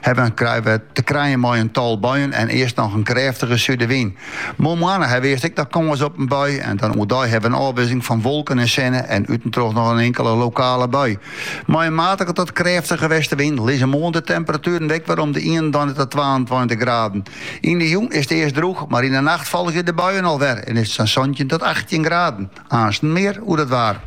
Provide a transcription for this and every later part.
Hebben krije we te krijen mei in tal buien en earst noch in krêftige súdewyn. Moarnmoarn ha we earst ek noch kâns op in bui en dan oerdei hawwe we in ôfwisseling fan wolken en sinne en útentroch noch in inkele lokale bui. Mei in matige tot krêftige westewyn lizze moarn de temperatueren ek wer om de ienentweintich tot twaentweintich graden. Yn de jûn is it earst drûch, mar yn de nacht folgje de buien al wer en is it sa'n santjin tot achttjin graden. Aansten mear oer dat waar.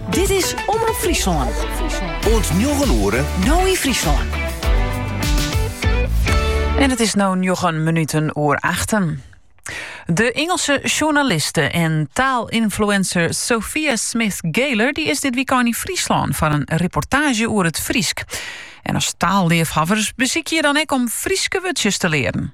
Dit is Omrop Fryslân. Oant njoggen oere. No yn Fryslân. En it is no njoggen minuten oer achten. De Ingelske sjoernaliste en taalinfluencer Sophia Smith Galer, dy is dit wykein yn Fryslân foar in reportaazje oer it Frysk. En as taalleafhawwer besykje je dan ek om Fryske wurdsjes te learen.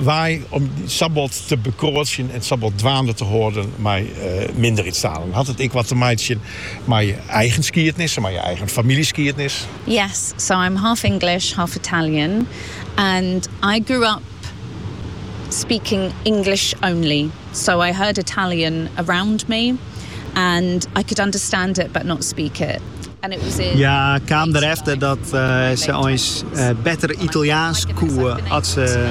Wêrom dy sa bot te bekroadzjen en sa bot dwaande te hâlden mei minderheidstalen. Hat it ek wat te meitsjen mei je eigen skiednis en mei je eigen famyljeskiednis? Yes, so I'm half English, half Italian and I grew up speaking English only, so I heard Italian around me and I could understand it but not speak it. Hja kaam derefter dat se eins better Italjaansk koe as se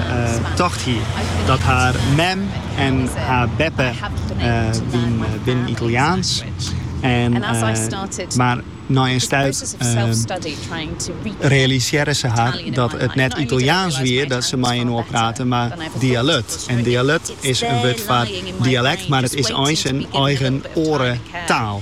tocht hie. Dat har mem en har beppe binne Italjaansk, mar nei in stuit realisearre se har dat it net Italjaansk wie dat se mei-inoar praten, mar dialët. En dialët is in wurd foar dialekt, mar it is eins in eigen oare taal.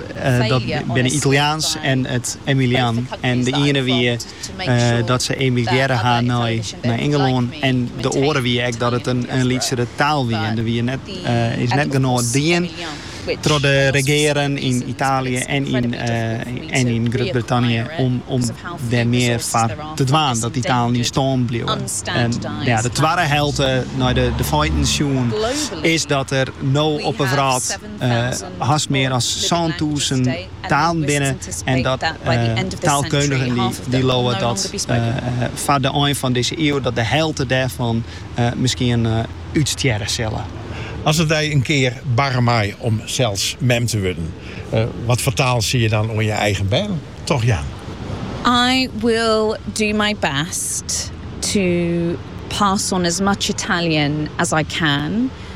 Dat binne Italjaansk en it Emilian. En de iene wie dat se emigrearre ha nei Ingelân en de oare wie ek dat it in lytsere taal wie. En der wie net, is net genôch dien troch de regearen yn Italië en yn Grut-Brittanje om dêr mear foar te dwaan dat dy talen yn stân bliuwe. De twadde helte nei de feiten sjoen is dat der no op 'e wrâld hast mear as sântûzen talen binne en dat taalkundigen dy leauwe dat foar de ein fan dizze iuw dat de helte dêrfan miskien útstjerre sille. As it dy in kear barre mei om sels mem te wurden, wat foar taal sil je dan oan je eigen bern trochjaan? I will do my best to pass on as much Italian as I can.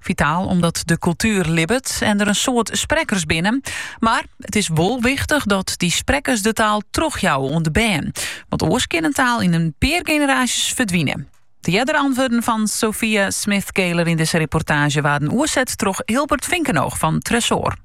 Fitaal omdat de kultuer libbet en der in soad sprekkers binne. Mar it is wol wichtich dat dy sprekkers de taal trochjouwe oan de bern. Want oars kin in taal yn in pear generaasjes ferdwine. De eardere antwurden fan Sophia Smith Galer yn dizze reportaazje waarden oerset troch Hilbert Vinkenoog fan Tresoar.